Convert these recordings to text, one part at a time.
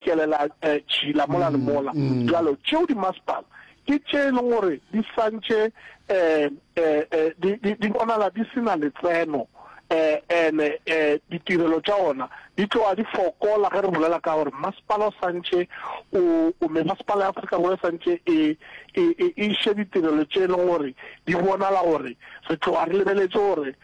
Ke lela tšhila mola le mola. Bjalo, tšeo dimasepala ke tše e lego gore di santše di bonala di se na letseno, and-e ditirelo tša ona di tloga di fokola ge re bolela ka gore masepala o santše o, memasepala ya Afrika Borwa e santše e iše ditirelo tše e lego gore di bonala gore re tloga re lebeletše gore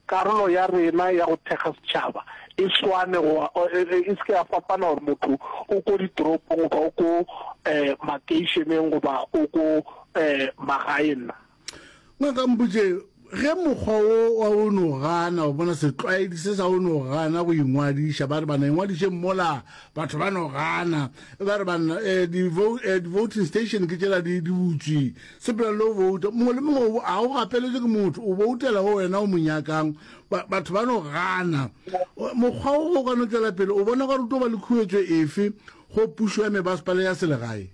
Karolo ya rena ya go thekga setšhaba e swane goba e se ke ya fapana gore motho o ko ditoropong goba o ko makeišeneng goba o ko magaeng na. Ngaka Mbuje, ge mokgwa wo wa go no gana go bona setlwaedi se sa go no gana go ingwadiša, ba re bana ingwadišeng mola, batho ba no gana, ba re bana di-voting station ke tšela di butswi, Sepela le go bouta. Mongwe le mongwe ga o gapeletše ke motho, o boutela go wena o mo nyakang. Ba, batho ba no gana. Mokgwa wo go ka no tšwela pele, o bona gore o tlo ba le khuetšo efe go pušo ya mebasepala ya selegae?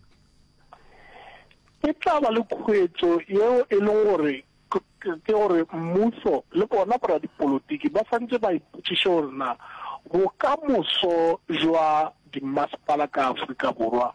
E tla ba le khuetšo yeo e leng gore ke gore mmuso le bona boradipolotiki ba swantše ba ipotšiše gore na bokamoso bja dimmasepala ka Afrika Borwa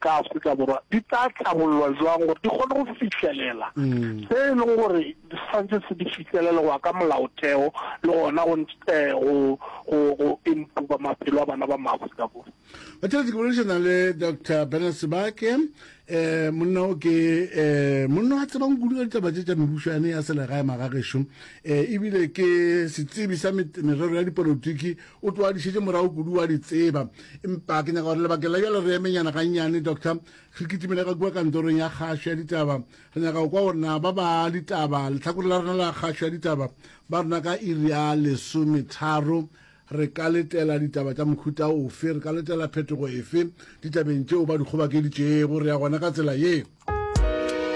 ka Afrika Borwa di tla hlabollwa jwang gore di kgone go fihlelela se e leng gore se santse se di fihlelele go ya ka molaotheo le gona go go improve maphelo a bana ba maaforika borwa ba tšhelete ke boledišana le dr bernard sebake um monna o ke um monna a tsebang kudu ka ditaba tše tša mebušane ya selegae magagešo um ebile ke setsebi sa merero ya dipolotiki O twadišetše morago kudu, wa di tseba. Empa ke nyaka gore lebakeng la bjale re emenyana gannyane, Doctor, re kitimele ka kua kantorong ya kgašo ya ditaba. Re nyaka go kwa gore na ba ba ditaba, lehlakore la rena la kgašo ya ditaba, ba rena ka iri ya lesometharo, re ka letela ditaba tša mohuta ofe, re ka letela phetogo efe ditabeng tšeo ba di kgobakeditšego. Re ya gona ka tsela ye.